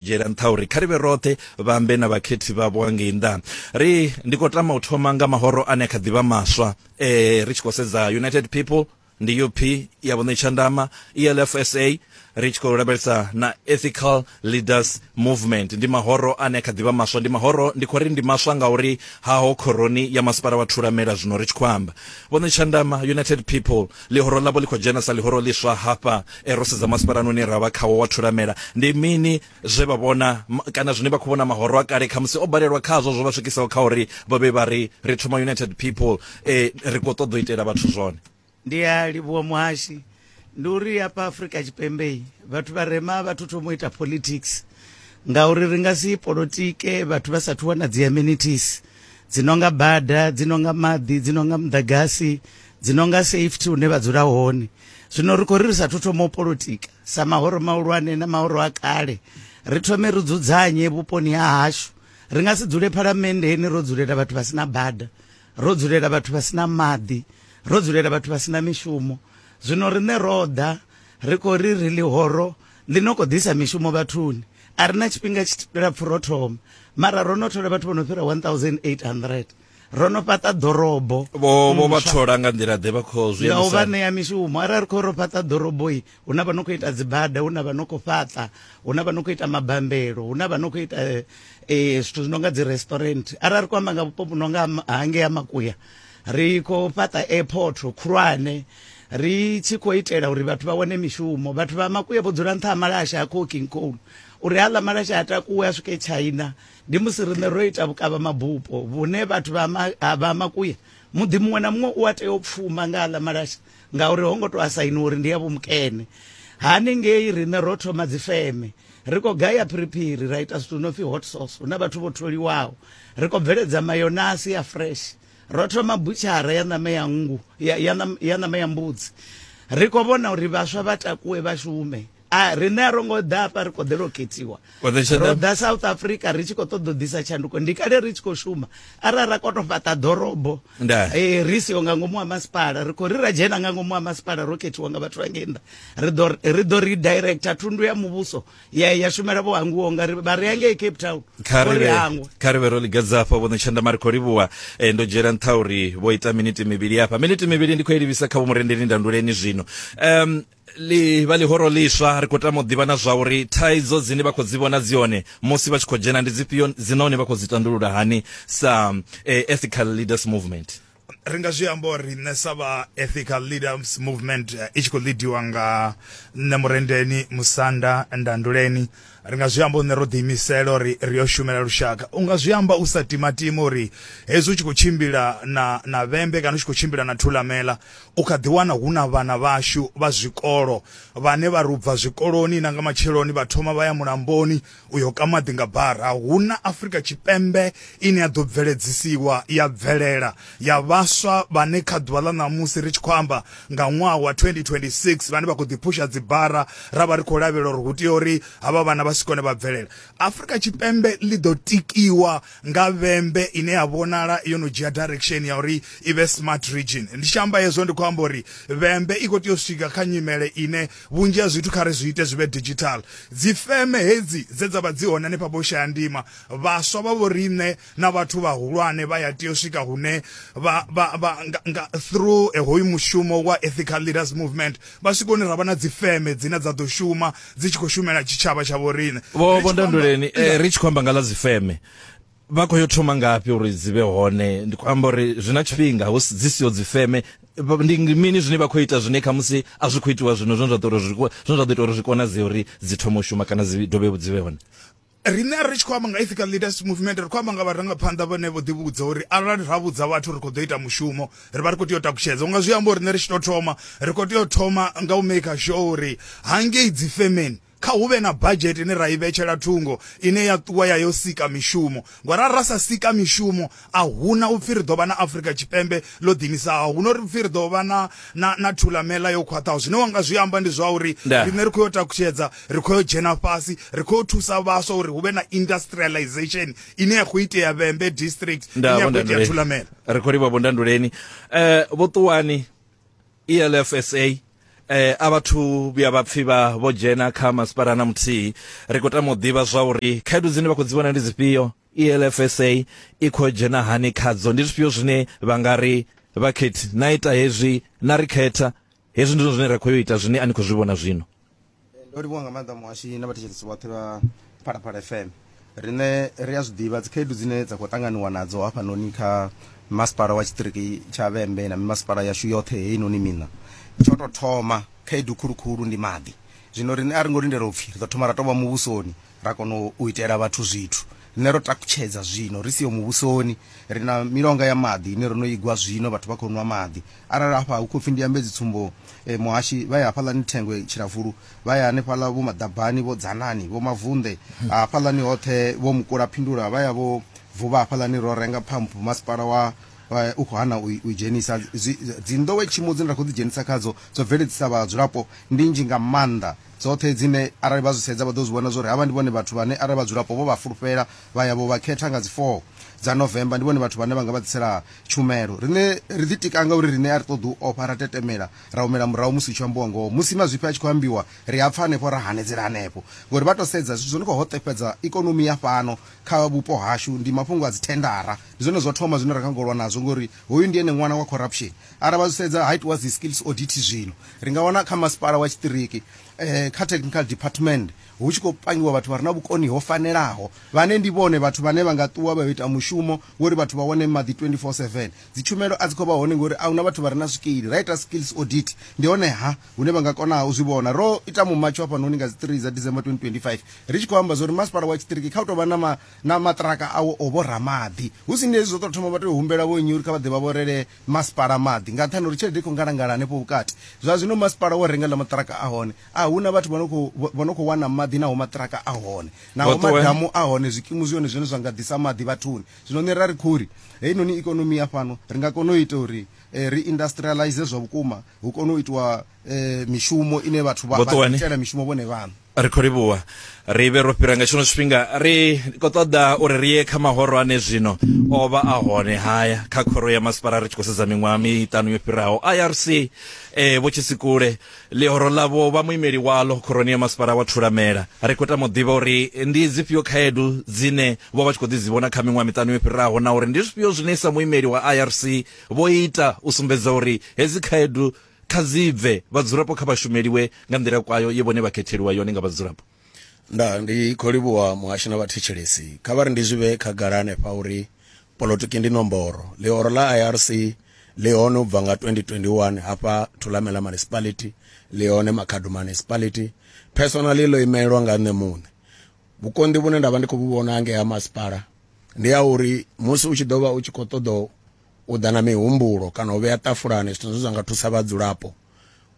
dzhiela nṱha uri kha ri vhe roṱhe vhambe na vhakhethi vhavho ngei nnḓa ri ndi khou tama u thoma nga mahoro ane kha ḓivha maswa eh ri tshi khou sedza united people ndi up ya vhuṋe tshandama elfsa ri tshi khou lavhelesa na ethical leaders movement ndi mahoro ane kha ḓivha maswa ndi mahoro ndi khou ri ndi maswa ngauri haho khoroni ya masipala wa thulamela zwino ri tshi khou amba vhuṋe tshandama united people Ḽihoro ḽavho ḽi khou dzhena sa ḽihoro ḽiswa hafha. Ro sedza masipalani une ra vha khawo wa Thulamela. Ndi mini zwe vha vhona, kana zwine vha khou vhona mahoro a kale khamusi o balelwa khazwo zwo vha swikisaho kha uri vha vhe vha ri, Ri thoma United People, ri khou ṱoḓa u itela vhathu zwone? Ndi a livhuwa muhashi. Ndi uri hafha Afrika Tshipembe vhathu vharema a vha thu thoma u ita politics ngauri ri nga si polotike vhathu vha sathu wana dzi amenities dzi no nga bada, dzi no nga maḓi, dzi no nga muḓagasi dzi no nga safety hune vha dzula hone zwino ri khou ri ri sa thoma u politika sa mahoro mahulwane na mahoro a kale ri thome ri dzudzanye vhuponi ha hashu ri nga si dzule phalamenndeni ro dzulela vhathu vha sina bada ro dzulela vhathu vha sina maḓi ro dzulela vhathu vha sina mishumo zwino riṋe ro ḓa ri khou ri ri ḽihoro ḽi no khou ḓisa mishumo vhathuni a ri na tshifhinga tshilapfhu ro thoma mara ro no thola vhathu vho no fhira 1800 ro no fhaṱa ḓorobo vho vho vha thola nga nḓila ḓe vha khou zwi nga u vha ṋea mishumo arali khou ro fhaṱa ḓoroboi hu na vha no khou ita dzibada hu na vha no khou fhaṱa hu na vha no khou ita mabambelo hu na vha no khou ita eh, eh, zwithu zwi no nga dzi restaurant arali ri khou amba nga vhupo vhu no nga hangea makuya ri khou fhaṱa airport khulwane ri tshi khou itela uri vhathu vha wane mishumo vhathu vha makuya vho dzula nṱha ha malasha a coking coal uri haḽa malasha a takuwe a swike china ndi musi riṋe ro ita vhukavha mabupo vhune vhathu vha vha makuya muḓi muṅwe na muṅwe u a tea u pfuma nga aḽa malasha ngauri ho ngo to a sainiwa uri ndi ya vhomukene haningei riṋe ro thoma dzifeme ri khou gaya phiriphiri ra ita zwithu no pfi hot sauce hu na vhathu vho tholiwaho ri khou bveledza mayonasi ya fresh ro thoma butshara ya ṋama ya nngu ya ṋama ya mbudzi ri khou vhona uri vhaswa vha takuwe vha shume a riṋe a ro ngo ḓa hafha ri khou ḓela u khethiwa ro ḓa south africa ri tshi khou ṱoḓa u ḓisa tshanduko ndi kale ri tshi khou shuma arali ra kono fhaṱa ḓorobo eh, ri siho nga ngomu wa masipala ri khou ri ra dzhena nga ngomu wa masipala ro khethiwa nga vhathu vha ngei nnḓa ri ḓo redirector thundu ya muvhuso ya ya shumela vho hanguwo nga ri vha ri ya ngei cape town ri hangwa kha ri vhe ro ligadza hafha vhono tshanḓa mari khou livhuwa eh, ndo dzhiela nṱha uri vho ita miniti mivhili hafha miniti mivhili ndi khou i livhisa kha vho murendeli ndanduleni zwino um li vha ḽihoro ḽiswa ri khou tama u ḓivha na zwa uri thaidzo dzine vha khou dzi vhona dzi hone musi vha tshi khou dzhena ndi dzifhio dzi nahone vha khou dzi tandulula hani sa eh, ethical leaders movement ri nga zwi amba uri nṋe sa vha ethical leaders movement eh, i tshi khou lidiwa nga nṋe murendeni musanda ndanduleni ri nga zwi amba uri ro ḓiimisela uri ri yo shumela lushaka u nga zwi amba u sa timatima uri hezwi u tshi khou tshimbila na na vhembe kana u tshi khou tshimbila na thulamela u kha ḓi wana hu na vhana vhashu vha zwikolo vhane vha rubva zwikoloni na nga matsheloni vha thoma vha ya mulamboni u yo ka maḓi nga bara hu na Afrika Tshipembe ine ya ḓo bveledzisiwa ya bvelela ya vhaswa vhane kha ḓuvha ḽa ṋamusi ri tshi khou amba nga ṅwaha wa 2026 vhane vha khou ḓiphusha dzibara ra vha ri khou lavhelela uri hu tea uri havha vhana vha si kone vha bvelela Afrika Tshipembe ḽi ḓo tikiwa nga vhembe ine ya vhonala yo no dzhia direction ya uri i vhe smart region ndi tshi amba hezwo ndi khou amba uri vhembe i khou tea u swika kha nyimele ine vhunzhi ha zwithu kha ri zwi ite zwi vhe digital dzifeme hedzi dze dza vha dzi hone hanefha vho shaya ndima vhaswa vha vho riṋe na vhathu vhahulwane vha ya tea u swika hune vha vha vha nga, nga through eh, hoyu mushumo wa ethical leaders movement vha swika hune ra vha na dzifeme dzine dza ḓo shuma dzi tshi khou shumela tshitshavha tsha vhoriṋe vho Ri vho tshi khou amba- ndanduleni eh, ri tshi khou amba nga ḽa dzifeme vha khou yo thoma ngafhi uri dzi vhe hone ndi khou amba uri zwi na tshifhinga hu si- dzi siho dzifeme Vha- ndi ndi mini zwine vha khou ita zwine khamusi a zwi khou itiwa zwino zwine zwa ḓo uri zwi ko- zwine zwa ḓo ita uri zwi konadzee uri dzi thome u shuma kana dzi dovhe dzi vhe hone riṋe a ri tshi khou amba nga ethical leaders movement ri khou amba nga vharangaphanḓa vhane vho ḓivhudza uri arali ra vhudza vhathu ri khou ḓo ita mushumo ri vha ri khou tea u takutshedza unga zwi amba uri riṋe ri tshi tou thoma ri khou tea u thoma nga u maker sure uri hangei dzi femeni kha hu vhe na budget ine ra i vhetshela thungo ine ya ṱuwa ya yo sika mishumo ngori arali ra sa sika mishumo a huna upfi ri ḓo vha na afrika tshipembe ḽo ḓinisaho huno ri pfi ri ḓo vha na na, na thulamela yo khwaṱhaho zwine wanga zwi amba ndi zwa uri riṋe ri khou yo takutshedza ri khou yo dzhena fhasi ri khou yo thusa vhaswa uri hu vhe na industrialization ine ya khou itea vhembe district ine ya khou itea thulamela ri khou livha vhondanduleni um eh, vhoṱuwani elfsa eh a vhathu vhuya vha pfhi vha vho dzhena kha masipala na muthihi ri khou tama u ḓivha zwa uri khaedu dzine vha khou dzi vhona ndi dzifhio ELFSA i khou dzhena hani khadzo? Ndi zwifhio zwine vha nga ri vhakhethi na ita hezwi na ri khetha hezwi ndi zwine ra khou yo ita zwine a ni khou zwi vhona zwino ndo livhuwa nga maanḓa muhashi na vhathetshelesi vhoṱhe vha phalaphala fm riṋe ri a zwi ḓivha dzikhaedu dzine dza khou ṱanganiwa nadzo hafhanoni kha masipala wa tshiṱiriki tsha vhembe na mimasipala yashu yoṱhe heinoni miṋa tsho tou thoma khaedu khulukhulu ndi maḓi zwino riṋe a ri ngo lindela upfhi ri ḓo thoma ra tovha muvhusoni ra kona u itela vhathu zwithu. Riṋe ro takutshedza zwino, ri siho muvhusoni. Ri na milonga ya maḓi ine ro no i gwa zwino, vhathu vha khou nwa maḓi. Arali hafha hu khou pfi ndi ambe dzitsumbo, muhashi, vha ya hafhaḽani Thengwe Tshilavulu, vha ya hanefhaḽa vho Maḓabani, vho Dzanani, vho Mavunḓe, hafhaḽani hoṱhe vho Mukulapindula, vha ya vho Vuvha hafhaḽani, ro renga phamphu, masipala wa u khou hana u i dzhenisa. Dzi, dzi nḓowetshumo dzine ra khou ḓidzhenisa khadzo dzo bveledzisa vhadzulapo ndi nnzhi nga maanḓa. dzoṱhe dzine arali vha zwi sedza vha ḓo zwi vhona zwa uri havha ndi vhone vhathu vhane arali vhadzulapo vho vha fulufhela vha ya vho vha khetha nga dzi 4 dza November ndi vhone vhathu vhane vha nga vha ḓisela tshumelo. Riṋe ri ḓitika nga uri riṋe a ri ṱoḓi u ofha, ra tetemela, ra humela murahu musi hu tshi ambiwa ngoho. Musi mazwifhi a tshi khou ambiwa ri a pfa hanefho ra hanedzela hanefho ngori vha tou sedza zwithu zwo no khou hoṱefhedza ikonomi ya fhano kha vhupo hashu ndi mafhungo a dzi thendara. Ndi zwone zwo thoma zwine ra kha ngo lwa nazwo ngori hoyu ndi ene ṅwana wa corruption. Arali vha zwi sedza ha itiwa dzi skills audit zwino ri nga wana kha masipala wa tshiṱiriki eh, kha technical department hu tshi khou pangiwa vhathu vha re na vhukoni ho fanelaho vhane ndi vhone vhathu vhane vha nga ṱuwa vha ita mushumo wori vhathu vha wane maḓi 24/7 dzi tshumelo a dzi khou vha hone ngori a huna vhathu vha re na zwikili ra ita skills audit ndi hone ha hune vha nga kona u zwi vhona ro ita mumatsho hafha noni nga dzi 3 dza December 2025 ri tshi khou amba zwa uri masipala wa tshiṱiriki kha u tou vha na ma, na maṱiraka awo o vho ramaḓi hu si ndi hezwi zwo tou thoma vha tou humbela vho nnyi uri kha vha ḓe vha vhorele Masipala maḓi nga nṱhani ha uri tshelede i khou ngalangala hanefho vhukati. Zwa zwino masipala wo renga ḽa maṱiraka a hone a hu na vhathu vha no khou vha no khou wana maḓi naho maṱiraka a hone naho madamu a hone zwikimu zwi hone zwine zwa nga ḓisa maḓi vhathuni. Zwino nṋe ra ri khori heinoni ikonomi ya fhano ri nga kona u ita uri ri industrialize zwa vhukuma hu kone u itiwa eh, mishumo ine vhathu vha- Vho vha Ṱuwani. itela mishumo vhone vhaṋe ri khou livhuwa ri vhe ro fhira nga tshino tshifhinga ri khou ṱoḓa uri ri ye kha mahoro ane zwino o vha a hone haya kha khoro ya masipala ri tshi khou sedza miṅwaha miṱanu yo fhiraho irc eh, vho tshisikule ḽihoro ḽavho vha muimeli waḽo khoroni ya masipala wa thulamela ri khou tama u ḓivha uri ndi dzifhio khaedu dzine vho vha tshi khou ḓi dzi vhona kha miṅwaha miṱanu yo fhiraho na uri ndi zwifhio zwine sa muimeli wa irc vho ita u sumbedza uri hedzi khaedu Kha dzi bve vhadzulapo kha vha shumeliwe nga nḓila kwayo ye vhone vha khetheliwa yone nga vhadzulapo. Ndaa, ndi khou livhuwa muhashi na vhathetshelesi. Kha vha ri ndi zwi vhee khagala hanefha uri polotiki ndi nomboro. Ḽihoro ḽa IRC ḽi hone u bva nga 2021 hafha Thulamela Municipality, ḽi hone Makhado Municipality. Personally ḽo imelwa nga nṋe muṋe. Vhukonḓi vhune nda vha ndi khou vhu vhona ngei ha masipala ndi ha uri musi u tshi ḓo vha u tshi khou ṱoḓa u ḓa na mihumbulo kana u vhea ṱafulani zwithu zwine zwa nga thusa vhadzulapo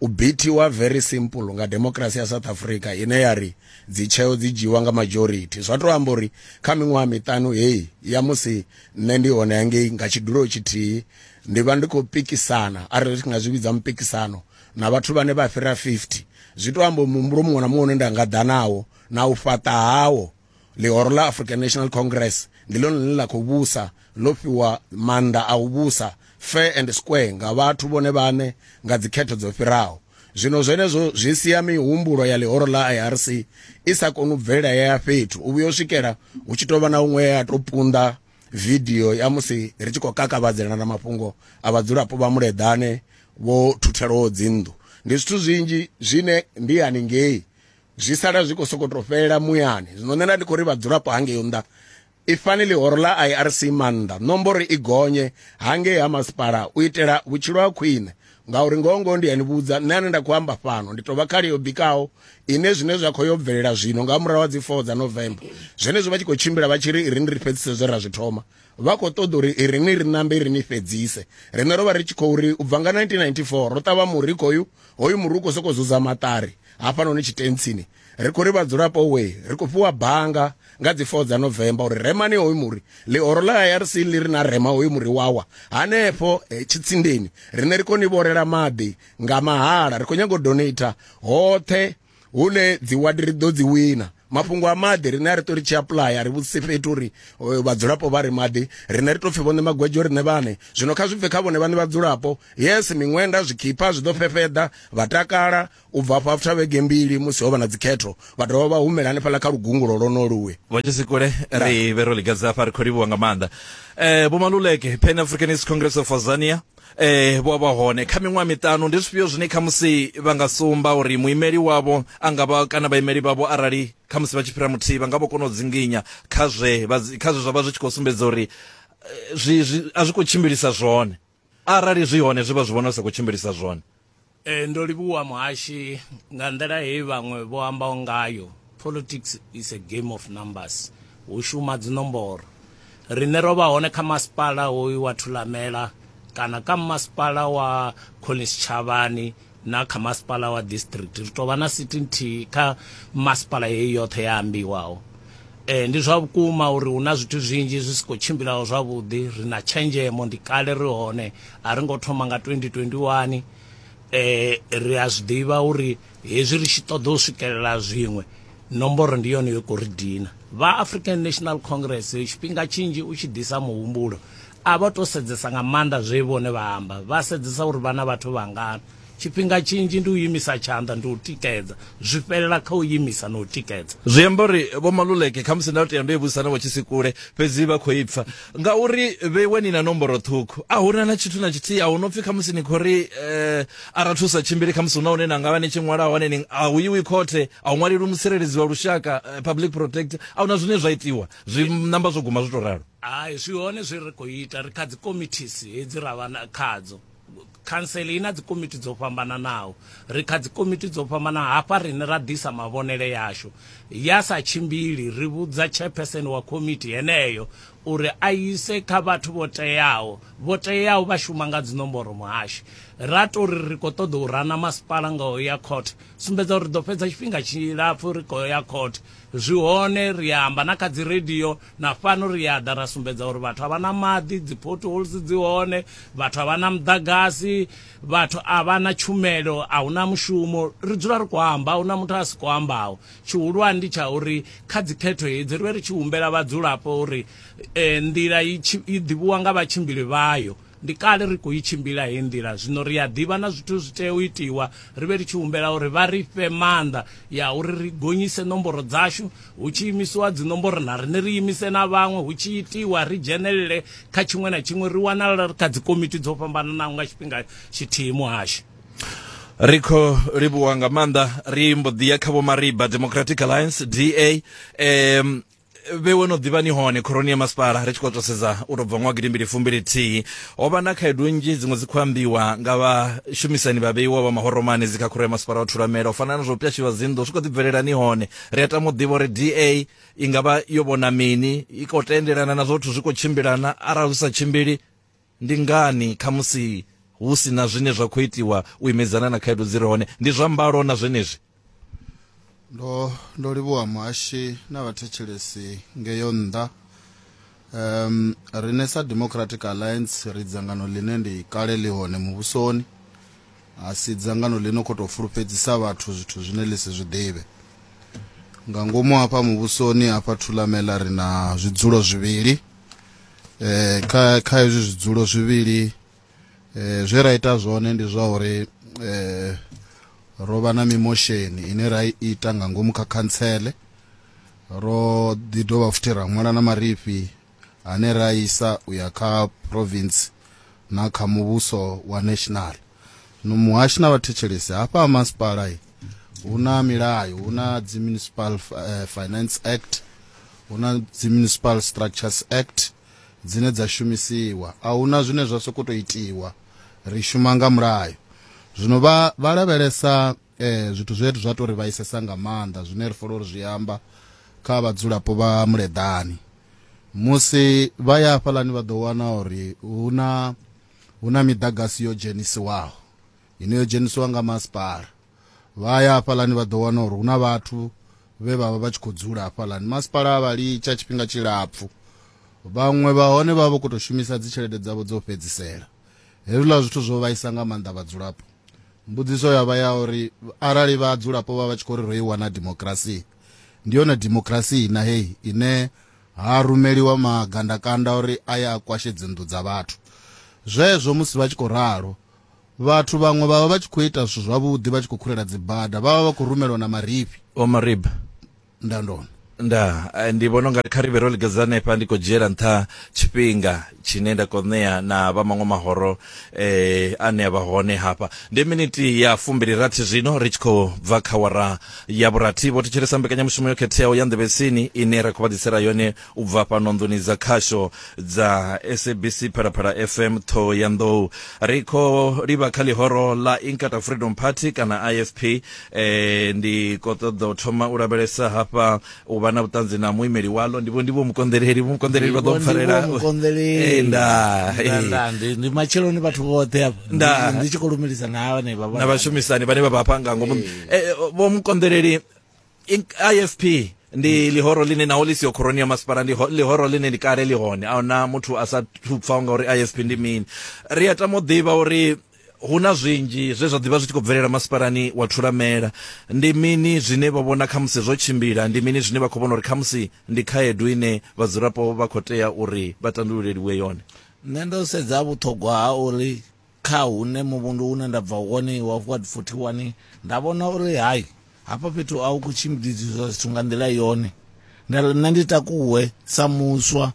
u bithiwa very simple nga democracy ya south africa ine ya ri dzitsheo dzi dzhiiwa nga majority zwa tou amba uri kha miṅwaha miṱanu heyi ya musi nṋe ndi hone hangei nga tshidulo tshithihi ndi vha ndi khou pikisana arali ri nga zwi vhidza mupikisano na vhathu vhane vha fhira 50 zwi tou amba muhumbulo muṅwe na muṅwe une nda nga ḓa nawo na u fhaṱa hawo ḽihoro ḽa african national congress ndi ḽone ḽine ḽa khou vhusa ḽo fhiwa maanḓa a u vhusa fair and square nga vhathu vhone vhane nga dzikhetho dzo fhiraho zwino zwenezwo zwi sia mihumbulo ya ḽihoro ḽa irc i sa koni u bvelela ya ya fhethu u vhuya u swikela hu tshi tou vha na huṅwe ya tou punḓa vidio ya musi ri tshi khou kakavhadzela na mafhungo a vhadzulapo vha muleḓane vho thuthelwaho dzinnḓu ndi zwithu zwinzhi zwine ndi haningei zwi sala zwi khou sokou tou fhelela muyani zwino nṋe nda ndi khou ri vhadzulapo hangeyo nnḓa i fanele horo ḽa irc maanḓa nomboro i gonye hangei ha masipala u itela vhutshilo ha khwine ngauri ngoho ngoho ndi yani vhudza nṋe ane nda khou amba fhano ndi tou vha khali yo bikaho ine zwine zwa khou yo bvelela zwino nga murahu ha dzi four dza november zwenezwo vha tshi khou tshimbila vha tshi ri i ri ni ri fhedzise zwe ra zwi thoma vha khou ṱoḓa uri i ri ni ri nambe i ri ni fhedzise riṋe ro vha ri tshi khou ri u bva nga 1994 ro ṱavha murikho hoyu hoyu muri u khou sokou zuza maṱari hafhanoni tshitentsini ri khou ri vhadzulapo we ri khou fhiwa banga nga dzi 4 dza novemba uri remani hoyu muri ḽihoro ḽa irc ḽi ri na rema hoyu muri wawa hanefho eh, tshitsindeni rine ri khou ni vhorela maḓi nga mahala ri khou nyaga u donata hoṱhe hune dzi wadi ri ḓo dzi wina mafhungo a maḓi rine a ri ṱo ri tshi apuḽaya a ri vhudzise fhethu uri eh, vhadzulapo vha ri maḓi rine ri tou pfhi vhone magwedzo rine vhane zwino kha zwi bve kha vhone vhane vhadzulapo yes miṅwenda zwikhipha zwi ḓo fhefheḓa vha takala u bva afho after vhege mbili musi ho vha na dzikhetho vha dovha vha humela hanefhaḽa kha lugungulo lwonoluwe vho tshisikule ri vhe ro ligadza afha ri khou livhuwa nga maanḓa um eh, vho maluleke pan africanist congress of azania eh vho vha hone kha miṅwaha miṱanu ndi zwifhio zwine kha musi vha nga sumba uri muimeli wavho a nga vha kana vhaimeli vhavho arali kha musi vha tshi fhira muthihi vha nga vho kona u dzinginya kha zwe kha zwe zwa vha zwi tshi khou sumbedza uri eh, zwi a zwi khou tshimbilisa zwone arali zwi hone zwi vha zwi vhona zwi sa khou tshimbilisa zwone e, ndo livhuwa muhashi nga nḓila heyi vhaṅwe vho ambaho ngayo politics is a game of numbers hu shuma dzinomboro rine ro vha hone kha masipala hoyu wa thulamela kana kha masipala wa collins tshavhani Na kha masipala wa district ri tou vha na sithi nthihi kha masipala heyi yoṱhe ya ambiwaho. E, ndi zwa vhukuma uri hu na zwithu zwinzhi zwi si khou tshimbilaho zwavhuḓi, ri na tshenzhemo, ndi kale ri hone, a ri ngo thoma nga 2021. E, ri a zwi ḓivha uri hezwi ri tshi ṱoḓa u swikelela zwiṅwe, nomboro ndi yone yo khou ri dina. Vha African National Congress tshifhinga tshinzhi u tshi ḓisa muhumbulo A vha tou sedzesa nga maanḓa zwe vhone vha amba, vha sedzesa uri vha na vhathu vhangana. Tshifhinga tshinzhi ndi u imisa tshanḓa, ndi u tikedza. Zwi fhelela kha u imisa na u tikedza. Zwi amba uri Vho Maluleke, khamusi nda tea ndo i vhudzisa na Vho Tshisikule, fhedzi vha khou i pfa. Ngauri vhewa ni na nomboro ṱhukhu, a hu na na tshithu na tshithihi. A hu no pfi khamusi ni khou ri arali thu sa tshimbili khamusi hu na hune na nga vha ni tshi ṅwala hone, ni, a hu iwi khothe, a hu ṅwalelwi mutsireledzi wa lushaka, public protector. A hu na zwine zwa itiwa, zwi namba zwo guma zwo tou ralo. Hai, zwi hone zwe ri khou ita. Ri kha dzi komithies hedzi ra vha khadzo. Khantsele i na dzi komiti dzo fhambananaho. Ri kha dzi komiti dzo fhambana hafha rine ra ḓisa mavhonele yashu. Ya sa tshimbili ri vhudza chairperson wa komiti heneyo uri a ise kha vhathu vho teaho. Vho teaho vha shuma nga dzi nomboro muhashi. Ra to ri ri khou ṱoḓa u rana masipala nga u ya court. Sumbedza uri ri ḓo fhedza tshifhinga tshilapfu ri khou ya court. Zwi hone ri amba na kha dzi radio na fhano ri a ḓa ra sumbedza uri vhathu a vha na maḓi dzi potholes dzi hone vhathu a vha na muḓagasi vhathu a vha na tshumelo a hu na mushumo ri dzula ri khou amba a hu na muthu a si khou ambaho tshihulwane ndi tsha uri kha dzikhetho hedzi ri vhe ri tshi humbela vhadzulapo uri um nḓila i ḓivhiwa nga vhatshimbili vhayo Ndi kale ri khou i tshimbila heyi nḓila, zwino ri a ḓivha na zwithu zwi tea u itiwa, ri vhe ri tshi humbela uri vha ri fhe maanḓa ya uri ri gonyise nomboro dzashu, hu tshi imisiwa dzinomboro na riṋe ri imise na vhaṅwe, hu tshi itiwa ri dzhenelele kha tshiṅwe na tshiṅwe, ri wanala ri kha dzikomiti dzo fhambananaho nga tshifhinga tshithihi muhasho. Ri khou livhuwa nga maanḓa. Ri mbo ḓi ya kha Vho Mariba, Democratic Alliance, DA. vhewe no ḓivha ni hone khoroni ya masipala ri tshi khou tou sedza u tou bva ṅwaha gidimbili fumbili thihi ho vha na khaedu nnzhi dziṅwe dzi khou ambiwa nga vhashumisani vha vheiwa vha mahoromani dzi kha khoro ya masipala wa thulamela u fana na zwo pyashiwa dzinḓu zwi khou ḓi bvelela ni hone ri a tama u ḓivha uri da i nga vha yo vhona mini i khou tendelana na zwothu zwi khou tshimbilana arali zwi sa tshimbili Ndi ngani khamusi hu si na zwine zwa khou itiwa u imedzana na khaedu dzi re hone? Ndi zwa mbalo na zwenezwi. Ndo, ndo livhuwa muhashi na vhathetshelesi ngeyo nnḓa. Um, rine sa Democratic Alliance ri dzangano ḽine ndi kale ḽi hone muvhusoni, a si dzangano ḽi no khou tou fulufhedzisa vhathu zwithu zwine ḽi si zwi ḓivhe. Nga ngomu hafha muvhusoni hafha Thulamela ri na zwidzulo zwivhili. eh kha kha izwi zwidzulo zwivhili eh zwe ra ita zwone ndi zwa uri eh ro vha na mimosheni ine ra i ita nga ngomu kha khantsele ro ḓi dovha futhi ra ṅwala na marifhi ane ra isa u ya kha province na kha muvhuso wa national no muhashi na vhathetshelesi hafha ha masipala hu na milayo hu na dzi municipal uh, finance act hu na dzi municipal structures act dzine dza shumisiwa a hu na zwine zwa sokou tou itiwa ri shuma nga mulayo zwino vha vha lavhelesa eh, zwithu zwe zwa tou ri vhaisesa nga maanḓa zwine ri fola uri zwi amba kha vhadzulapo vha muleḓani musi vha ya hafhaḽani vha ḓo wana uri hu na Hu na miḓagasi yo dzhenisiwaho ine yo dzhenisiwa nga masipala. Vha ya hafhaḽani vha ḓo wana uri hu na vhathu vhe vha vha vha tshi khou dzula hafhaḽani. Masipala a vha litsha tshifhinga tshilapfhu, vhaṅwe vha hone vha vha vha khou tou shumisa dzitshelede dzavho dzo fhedzisela. Hezwiḽa zwithu zwo vhaisa nga maanḓa vhadzulapo. Mbudziso ya vha ya uri arali vhadzulapo vha vha tshi khou ri ro i wana dimokirasi, ndi yone dimokirasi na heyi ine Ha rumeliwa magandakanda uri a ye a kwashe dzinnḓu dza vhathu. Zwezwo musi vha tshi khou ralo, vhathu vhaṅwe vha vha vha tshi khou ita zwithu zwavhuḓi vha tshi khou khurela dzibada, vha vha vha khou rumelwa na marifhi. Vho Marib. Ndandoni. Ndaa, ndi vhona u nga ri kha ri vhe ro lingedza hanefha, ndi khou dzhiela nṱha tshifhinga. tshine nda kho ṋea na vha maṅwe mahoro eh ane a vha hone hafha ndi miniti ya fumbili rathi zwino ri tshi khou bva kha wara ya vhurathi vho thetshelesa mbekanyamushumo yo khetheaho ya nḓevhetsini ine ra khou vha ḓisela yone u bva fhano nḓuni dza khasho dza sabc phalaphala fm ṱhoho ya nḓou ri khou livha kha ḽihoro ḽa inkata freedom party kana ifp eh ndi khou ṱoḓa u thoma u lavhelesa hafha u vha na vhuṱanzi na muimeli waḽo ndivho ndivho mukonḓeleli vho mukonḓeleli vha ḓo mpfarela eh, ndaa eh. ndi matsheloni vhathu vhoṱhe ndaa ndi tshi khou lumelisa na vhanevha na vhashumisani vhane vha vha hafha nga ngomu eh. vho mukonḓeleli ifp ndi lihoro line naho ḽi siyo khoroni ya masipala ndi lihoro line ndi kale ḽi hone a huna muthu a sa thupfaho ngauri ifp ndi mini ri a tama u ḓivha uri hu na zwinzhi zwe zwa ḓivha zwi tshi khou bvelela masipalani wa thulamela ndi mini zwine vha vhona khamusi zwo tshimbila ndi mini zwine vha khou vhona uri khamusi ndi khaedu ine vhadzulapo vha khou tea uri vha tandululeliwe yone nṋe ndo sedza vhuṱhogwa ha uri kha hune muvhundu une nda bva wone wa ward 41 nda vhona uri hai hafha fhethu a hu khou tshimbidziswa zwithu nga nḓila yone nṋe ndi takuwe sa muswa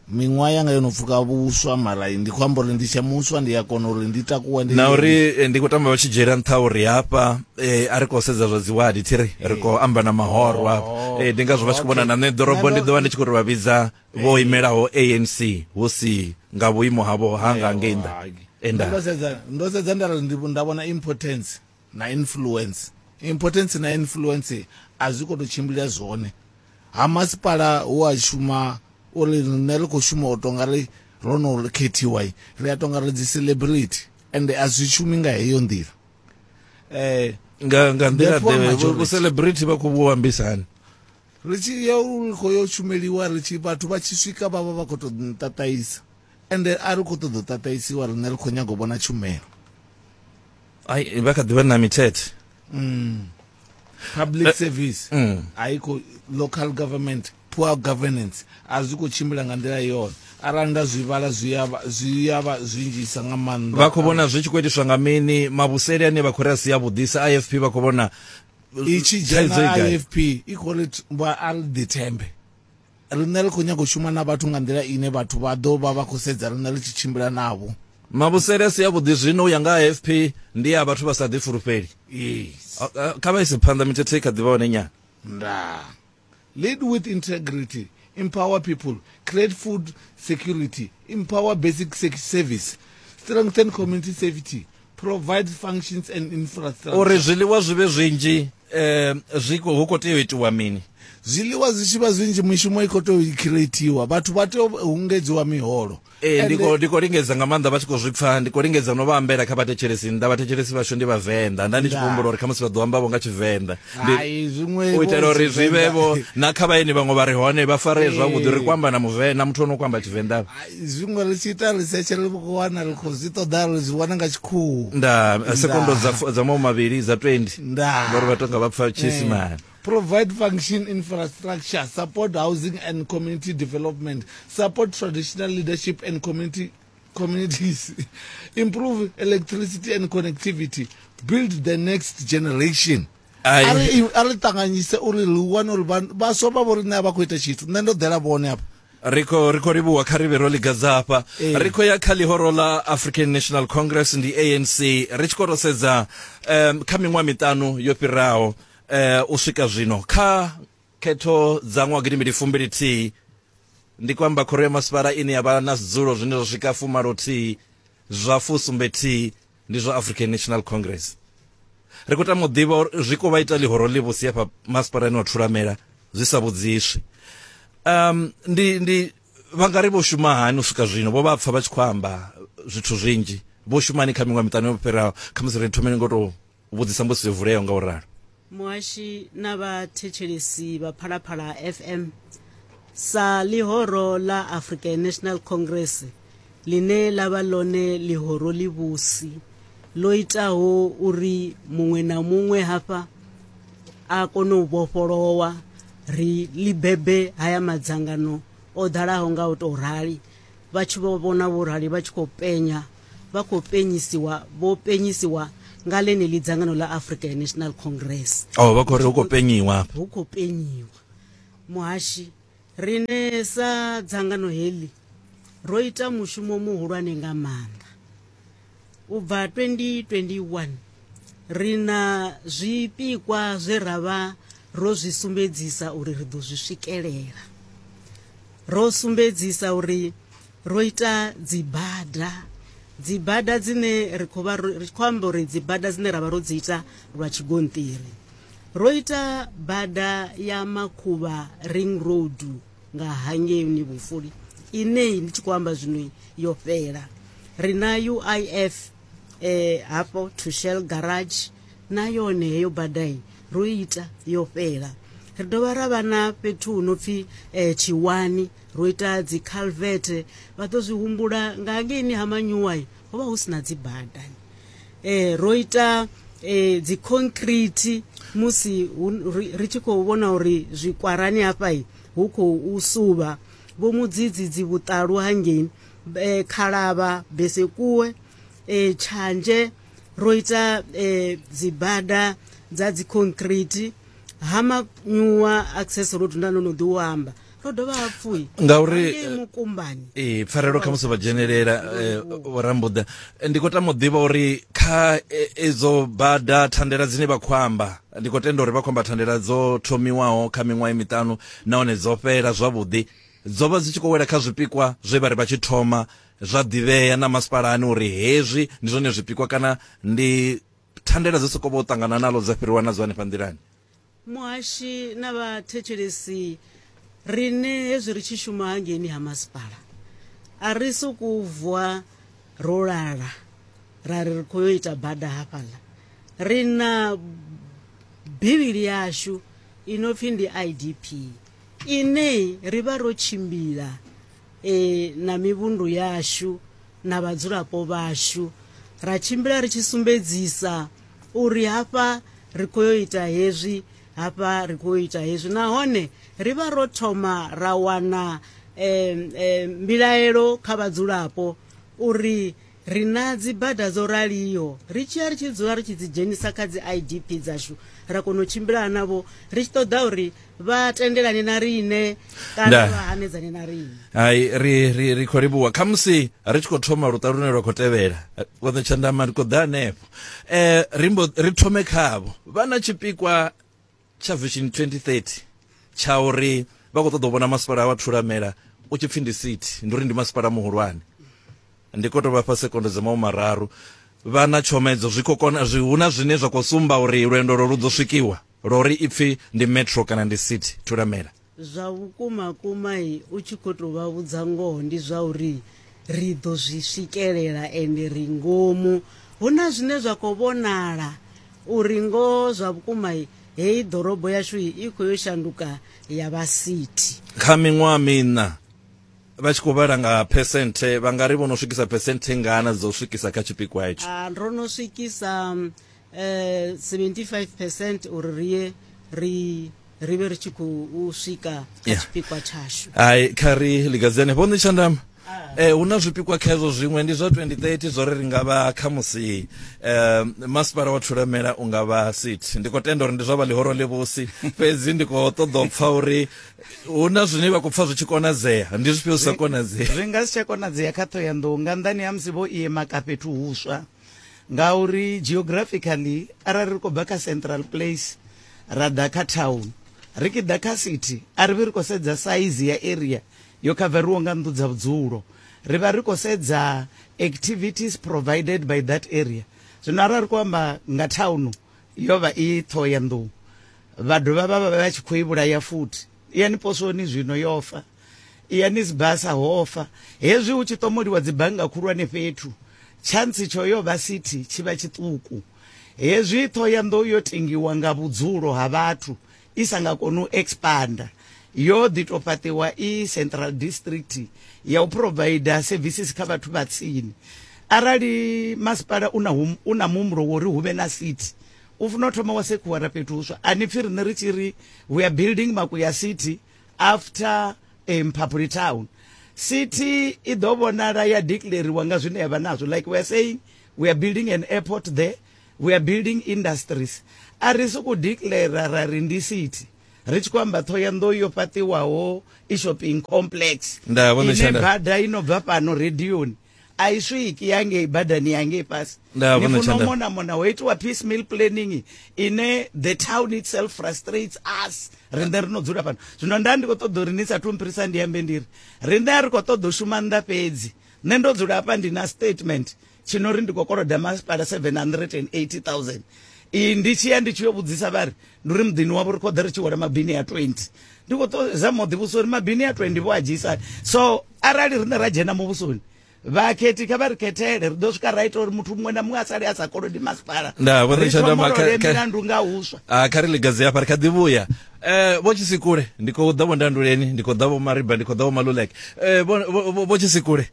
Miṅwaha yanga yo no pfuka vhuswa mara ndi khou amba uri ndi tshe muswa ndi a kona uri ndi takuwe ndi na uri eh, ndi khou tamba vha tshi dzhiela nṱha uri hafha eh, a ri khou sedza zwa dziwadi thi ri ri khou amba na mahoro hafha Oh, Eh, ndi ngazwo vha tshi khou vhona na nṋe ḓorobo okay. ndi ḓo vha ndi tshi khou ri vha vhidza vho imelaho anc hu si nga vhuimo havho hanga ngei nnḓa Hai. enda ndo sedza ndo sedza nda ri ndi- nda vhona impotence na influence. Impotence na influence a zwi khou tou tshimbila zwone. Ha masipala hu a shuma uri riṋe ri khou shuma u tou nga ri ro no khethiwa, ri a tou nga ri dzi celebrity ende a zwi shumi nga heyo nḓila. Nga nga nḓila Therefore, ḓe majority. vhu celebrity vha khou vhu ambisa hani? ri tshi ya u ri khou yo shumeliwa ri tshi vhathu vha tshi swika vha vha vha khou tou nṱaṱaisa ende a ri khou ṱoḓa u ṱaṱaisiwa riṋe ri khou nyaga u vhona tshumelo ai vha kha ḓivha na mithethe mm. public eh, service mm. haiko local government poor governance a zwi khou tshimbila nga nḓila yone arali nda zwi vhala zwi ya vha zwinzhisa nga maanḓa vha khou vhona zwi tshi khou itiswa nga mini mavhuseli ane vha khou ri a si yavhuḓisa ifp vha khou vhona i tshi dzhena ifp i khou ri vha a ri ḓithembe Riṋe ri khou nyaga u shuma na vhathu nga nḓila ine vhathu vha ḓo vha vha khou sedza riṋe ri tshi tshimbila navho. Mavhusele a si avhuḓi zwino u ya nga ha AFP ndi a vhathu vha sa ḓifulufheli. Yes. Kha vha ise phanḓa, mithethe i kha ḓi vha hone nyana. Ndaa. Lead with integrity, empower people, create food security, Empower Basic Service, Strengthen Community Safety, Provide Functions and Infrastructure. Uri zwiḽiwa zwi vhe zwinzhi eh, zwi hu khou tea u itiwa mini? zwiḽiwa zwi tshi vha zwinzhi mishumo i khou tou creatiwa vhathu vha tea u hungedziwa miholo ee ndi khou lingedza nga maanḓa vha tshi khou zwi pfa ndi khou lingedza no vha ambela kha vhathetshelesi nnḓa vhathetshelesi vhashu ndi vhavenḓa nda ndi tshi khou humbula uri khamusi vha ḓo ambavho nga tshivenḓa u itela uri zwi vhe vho na kha vhaeni vhaṅwe vha re hone vha faree zwavhuḓi ri kwamba na muvenḓa muthu o no kwamba tshivenḓa zwiṅwe ri tshi ita research ri vho wana ri khou zwi ṱoḓa ri zwi wana nga tshikhuhu nda sekondo dza mawu mavhili dza 20 ngori vha tonga vha pfa tshiisimane eh. provide function infrastructure support housing and community development support traditional leadership and community communities improve electricity and connectivity build the next generation Ai. a ri i- a ri ṱanganyise uri ri wane uri vha- vhaswa vha vho riṋe a vha khou ita tshithu nṋe ndo ḓela vhone afha ri khou ri khou livhuwa kha ri vhe ro ligadza hafha Ee. ri khou ya kha ḽihoro ḽa african national congress ndi anc ri tshi khou ro sedza um, kha miṅwaha miṱanu yo fhiraho um, u swika zwino kha Khetho dza ṅwaha gidi mbili fumbili thihi ndi kwamba khoro ya masipala ine ya vha na zwidzulo zwine zwa swika fumalo thihi zwa fusumbe thihi ndi zwa African National Congress. Ri khou tama u ḓivha uri zwi khou vha ita ḽihoro ḽi vhusi hafha masipalani wa Thulamela zwi sa vhudziswi. Um, ndi, ndi vha nga ri vho shuma hani u swika zwino vho vha pfa vha tshi khou amba zwithu zwinzhi vho shumani kha miṅwe miṱanu yo fhiraho khamusi ri thomeni ngo tou vhudzisa mbudziso yo vuleaho nga u ralo muhashi na vhathetshelesi vha phalaphala fm sa ḽihoro ḽa african national congress ḽine ḽa vha ḽone ḽihoro ḽivhusi ḽo itaho uri muṅwe na muṅwe hafha a kone u vhofholowa ri ḽi bebe haya madzangano o ḓalaho nga u tou rali vha tshi vho vhona vho rali vha tshi khou penya vha khou penyisiwa vho penyisiwa nga ḽeneḽi dzangano ḽa africa national congress oh vha khou ri hu khou penyiwa hu khou penyiwa muhashi rine sa dzangano heḽi ro ita mushumo muhulwane nga maanḓa U bva 2021, ri na zwipikwa zwe ra vha ro zwi sumbedzisa uri ri ḓo zwi swikelela. Ro sumbedzisa uri ro ita dzibada dzibada dzine ri khou vha ri khou amba uri dzibada dzine ra vha ro dzi ita lwa tshigonṱiri ro ita bada ya makhuvha ring road nga hangei ni vhufuli inei ndi tshi khou amba zwino yo fhela ri na uif eh, hafho to shell garage na yone heyo badai ro ita yo fhela ri dovha ra vha na fhethu hu no pfi eh, tshiwani ro ita dzi calvete vha ḓo zwi humbula nga hangeini ha manyuwai ho vha hu si na dzi bada eh ro ita eh dzi concrete musi ri tshi khou vhona uri zwikwarani hafha hu khou suvha vho mudzidzi dzi vhuṱalu hangei eh, khalavha besekuwe eh tshanje ro ita eh dzibada dza dzi concrete ha manyuwa access road nda no no ḓi u amba ro dovha hapfu ngauri eh, mukumbani ee pfarelo kha musi vha dzhenelela eh, vhorambuḓa eh, ndi khou tama u ḓivha uri kha edzo bada thandela dzine vha khou amba ndi khou tenda uri vha khou amba thandela dzo thomiwaho kha miṅwaha miṱanu nahone dzo fhela zwavhuḓi dzo vha dzi tshi khou wela kha zwipikwa zwe vha ri vha tshi thoma zwa ḓivhea na masipalani uri hezwi ndi zwone zwipikwa kana ndi thandela dzo sokou vha u ṱangana nalo dza fhiriwa na dzo hanefha nḓilani muhashi na vhathetshelesi rine hezwi ri tshi shuma hangeini ha masipala a ri sokou vuwa ro lala ra ri ri khou yo ita bada hafhaḽa ri na bivhili yashu i no pfhi ndi idp ine ri vha ro tshimbila ee na mivhundu yashu na vhadzulapo vhashu ra tshimbila ri tshi sumbedzisa uri hafha ri khou yo ita hezwi hafha ri khou yo ita hezwi nahone ri vha ro thoma ra wana um, um, mbilaelo kha vhadzulapo uri Ri na dzibada dzo raliho, ri tshi ya ri tshi dzula ri tshi dzi dzhenisa kha dzi IDP dzashu, ra kona u tshimbilana navho ri tshi ṱoḓa uri vha tendelane na riṋe kana Nda. vha hanedzane na riṋe. hai ri ri ri khou livhuwa khamusi ri tshi khou thoma luṱa lune lwa khou tevhela vhoṱhe tshandama ri khou ḓa hanefho um ri mbo ri thome khavho vha na tshipikwa tsha Vision 2030 tsha uri vha khou ṱoḓa u vhona masipala wa Thulamela u tshi pfhi ndi city ndi uri ndi masipala muhulwane ndi khou tou vha fha sekondo dza mawu mararu vha na tshomedzo zwi khou kona zwi hu na zwine zwa khou sumba uri lwendo lwo lu ḓo swikiwa lwa uri i pfhi ndi metro kana ndi city Thulamela Zwa vhukuma kuma u tshi kho to vha vhudza ngoho ndi zwa uri ri ḓo zwi swikelela ende ri ngomu hu na zwine zwa khou vhonala uri ngoho zwa vhukuma heyi ḓorobo yashu i khou yo shanduka ya vha sithi kha miṅwaha miṋa vha tshi khou vhala nga phesenthe vha nga ri vho no swikisa phesenthe ngana dza u swikisa kha tshipikwa hetsho ndo no swikisa eh, 75 percent uri ri ye ri ri vhe ri tshi khou swika kha Yeah. tshipikwa tshashu hai kha ri ligadzene vho netshandama Eh, hu na zwipikwa kha hezwo zwiṅwe ndi zwa 2030 zwo ri ri nga vha khamusi eh, masipala wa thulamela u nga vha sit ndi khou tenda uri ndi zwa vha ḽihoro ḽivhusi fhedzi ndi khou ṱoḓa u pfa uri hu na zwine vha khou pfa zwi tshi konadzea ndi zwifhio zwi sa konadzea zwi nga si tsha konadzea kha ṱhoyandou nga nḓani ha musi vho iema ka fhethu huswa ngauri geographically arali ri khou bva kha central place ra ḓa kha town ri ki ḓa kha city a ri vhi ri khou sedza saizi ya area yo khaveriwaho nga nnḓu dza vhudzulo ri vha ri khou sedza activities provided by that area zwino arali ri khou amba nga thauno yo vha i ṱhoho ya nḓou vha dovha vha vha vha tshi khou i vhulaya futhi yani posoni zwino yo fa iya ni sibasa hofa hezwi hu tshi ṱomoliwa dzibannga khulwane fhethu tshantsi tsho yo vha sithi tshi vha tshiṱuku hezwi ṱho ya nḓou yo tengiwa nga vhudzulo ha vhathu i sa nga koni u expanda yo ḓi tou fhaṱiwa i central district ya u provider services kha vhathu vha tsini arali masipala u na u na muhumbulo wo ri hu vhe na city u funa u thoma wa sekhuwara fhethu huswa a ni pfi riṋe ri tshi ri we are building makuya city after eh, mphaphuli town city i ḓo vhonala ya declariwa nga zwine yavha nazwo like we are saying we are building an airport there we are building industries a ri sokou declara ra ri ndi city ri tshi khou amba thoyandou yo fhaṱiwaho i shopping complex ine bada i no bva fhano radioni a i swiki ya ngei badani ya ngei fhasi ni funa u mona mona ho itiwa peace meal planning ine the town itself frustrates us rinde ri no dzula fhano zwino nda ndi khou ṱoḓa uri ni sa thu mphirisa ndi ambe ndiri rinde a ri khou ṱoḓa u shuma nnḓa fhedzi nṋe ndo dzula hafha ndi na statement tshino ri ndi khou koloda masipala 780000 iyi ndi tshi ya ndi tshi yo vhudzisa vhari ndi uri muḓini wavho ri khou ḓa ri tshi wela mabini ya 20 ndi khou to zama u ḓivhusa uri mabini a 20 vho a dzhiisani so arali riṋe ra dzhena muvhusoni vhakhethi kha vha ri khethele ri ḓo swika ra ita uri muthu muṅwe na muṅwe a sale a sa kolodi masipala Nda, vho Richard Amba, kha- kha- milandu nga huswa Ah, kha ri ligadze hafha ri kha ḓi vhuya um vho tshisikule ndi khou ḓa vho ndanduleni ndi khou ḓa vho mariba ndi khou ḓa vho maluleke um vho tshisikule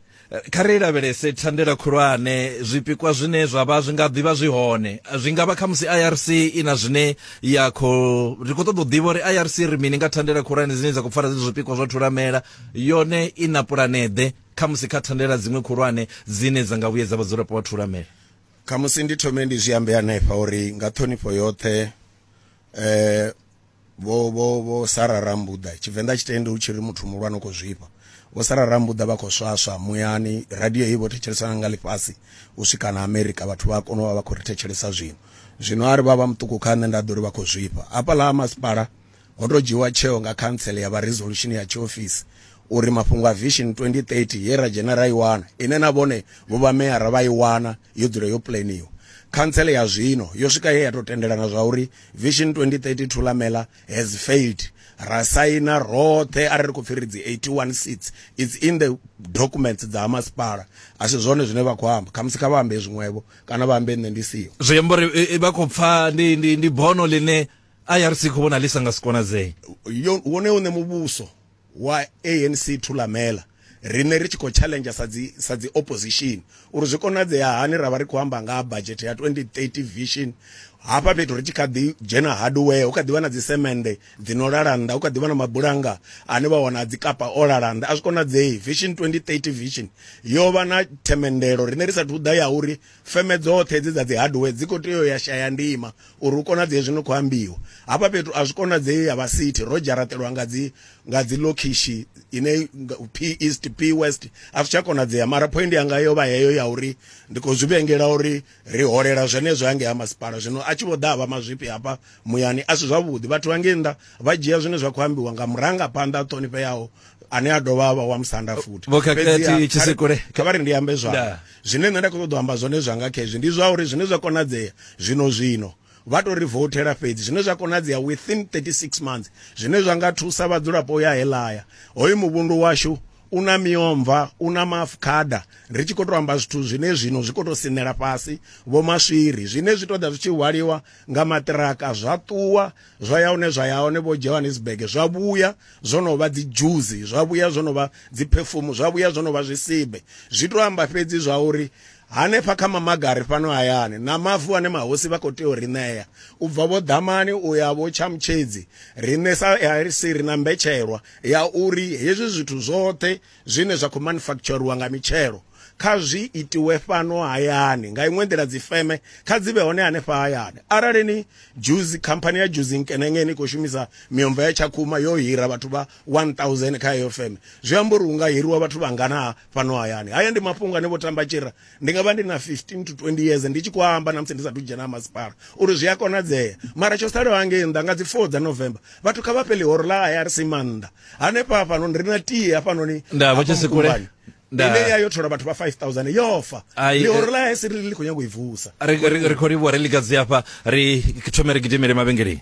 Kha ri lavhelese thandela khulwane, zwipikwa zwine zwa vha zwi nga ḓivha zwi hone. Zwi nga vha kha musi IRC i na zwine ya khou, ri khou ṱoḓa u ḓivha uri IRC ri mini nga thandela khulwane dzine dza khou pfara zwenezwo zwipikwa zwa thulamela, yone i na pulaneḓe kha musi kha thandela dziṅwe khulwane dzine dza nga vhuyedza vhadzulapo vha thulamela. Khamusi ndi thome ndi zwi ambe hanefha uri nga ṱhonifho yoṱhe, eh, vho vho vho sara rambuḓa tshivenḓa tshitende hu tshi ri muthu muhulwane u khou zwifha vho sara rambuḓa vha khou swaswa muyani radio heyi vho thetshelesana nga ḽifhasi u swika na amerika vhathu vha kona u vha vha khou ri thetshelesa zwino zwino a ri vha vha muṱuku kha nṋe nda ḓo ri vha khou zwifha hafhaḽa ha masipala ho tou dzhiwa tsheo nga khantsele ya vha resolution ya tshiofisi uri mafhungo a vision 2030 ye ra dzhena ra i wana ine na vhone vho vha meyara vha i wana yo dzula yo puleniwa khantsele ya zwino yo swika ye ya tou tendelana zwa uri Vision 2032 Lamela has failed ra saina roṱhe a ri khou pfhi ri dzi 81 seats it's in the documents dza ha masipala a si zwone zwine vha khou amba khamusi kha vha ambe zwiṅwevho kana vha ambe nṋe ndi siho zwi amba uri eh, eh, vha khou pfa ndi, ndi, ndi bono line irc khou vhona ḽi sa nga si konadzee wone une muvhuso wa ANC Thulamela, riṋe ri tshi khou tshaḽenzha sa dzi sa dzi opposition uri zwi konadzea hani ra vha ri khou amba nga ha budget ya 2030 vision hafha fhethu ri tshi kha ḓi dzhena hardware hu kha ḓi vha na dzisemende dzi no lala nnḓa hu kha ḓi vha na mabulanga ane vha wana dzi kapa o lala nnḓa a zwi konadzei vision 2030 vision yo vha na themendelo riṋe ri sathu ḓa ya uri feme dzoṱhe hedzi dza dzi hardware dzi khou tea u ya shaya ndima uri hu konadzee zwino khou ambiwa hafha fhethu a zwi konadzei ya vha city ro dzharaṱelwa nga dzi nga dzi lokhishi ine p east p west a zwi tsha konadzea mara point yanga yo vha heyo ya uri ndi khou zwi vhengela uri ri holela zwenezwo hangei ha masipala zwino a tshi vho ḓa vha mazwifhi hafha muyani a si zwavhuḓi vhathu vhangei nnḓa vha dzhia zwine zwa khou ambiwa nga murangaphanḓa a ṱhonifheaho ane a dovha a vha wa musanda futhi vhokhakhati tshisekule kha vha ri ndi ambe zwanga Zwine nṋe nda khou ṱoḓa u amba zwone zwanga kha hezwi ndi zwa uri zwine zwa konadzea zwino zwino vha tou ri vouthela fhedzi zwine zwa konadzea within 36 months zwine zwa nga thusa vhadzulapo ya helaya hoyu muvhundu washu u na miomva u na maafukhada ri tshi khou tou amba zwithu zwine zwino zwi khou tou sinela fhasi vho maswiri zwine zwi ṱoḓa zwi tshi hwaliwa nga maṱiraka zwa ṱuwa zwa ya hone zwa ya hone vho johannesburg zwa vhuya zwo no vha dzi dzhuzi zwa vhuya zwo no vha dzi perfume zwa vhuya zwo no vha zwisibe zwi to amba fhedzi zwa uri hanefha kha mamagari fhano hayani na mavu ane mahosi vha khou tea u ri ṋea u bva vho ḓamani u ya vho tshamutshedzi riṋe sa arc ri na mbetshelwa ya uri hezwi zwithu zwoṱhe zwine zwa khou manufakitshoriwa nga mitshelo kha zwi itiwe fhano hayani nga iṅwe nḓila dzi feme kha dzi vhe hone hanefha hayani arali ni juzi khamphani ya juzi nkenenge ni khou shumisa miomva ya tshakhuma yo hira vhathu vha 1000 kha heyo feme zwi amba uri hu nga hiriwa vhathu vha ngana fhano hayani haya ndi mafhungo ane vho tamba tshira Ndi nga vha ndi na 15 to 20 years ndi tshi khou amba na musi ndi sa thu dzhena ha masipala uri zwi a konadzea mara tsho salaho hangei nnḓa nga dzi 4 dza November vhathu kha vha fhe ḽihoro ḽa IRC mannḓa hanefha hafhanoni ri na tie hafhanoni nda vha tshi si kule ine ya yo thola vhathu vha 5000 yofa ḽihoro eh, ḽa IRC ri ḽi khou nyanga u i vusa ri khou livhuwa ri likadzi hafha ri thome ri gidimele mavhengeleni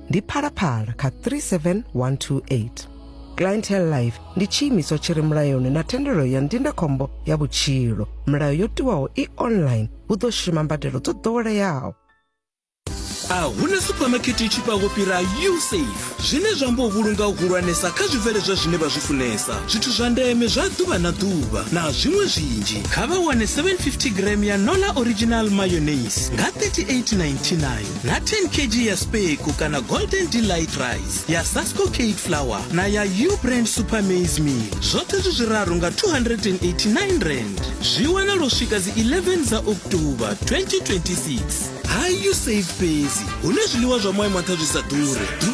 ndi phalaphala kha 37128 clientele life ndi tshiimiswa tshi re mulayoni na thendelo ya ndindakhombo ya vhutshilo milayo yo tiwaho i online hu ḓo shuma mbadelo dzo ḓoweleaho a huna supamakete i tshifhaho fhira usafe zwine zwa amba u vhulunga u hulwanesa kha zwibveledzwa zwine vha zwi funesa zwithu zwa ndeme zwa ḓuvha na ḓuvha na zwiṅwe zwinzhi kha vha wane 750 gram ya nola original mayonnaise nga 3899 na 10 kg ya speku kana golden delight rice ya sasco cake flour na ya u brand super maize meal zwoṱhe zwi zwiraru nga 289 rand zwi wana lwo swika dzi 11 dza oktoba 2026 hayi u save fhedzi hune zwiḽiwa zwa moya mwaṱha zwi sa ḓure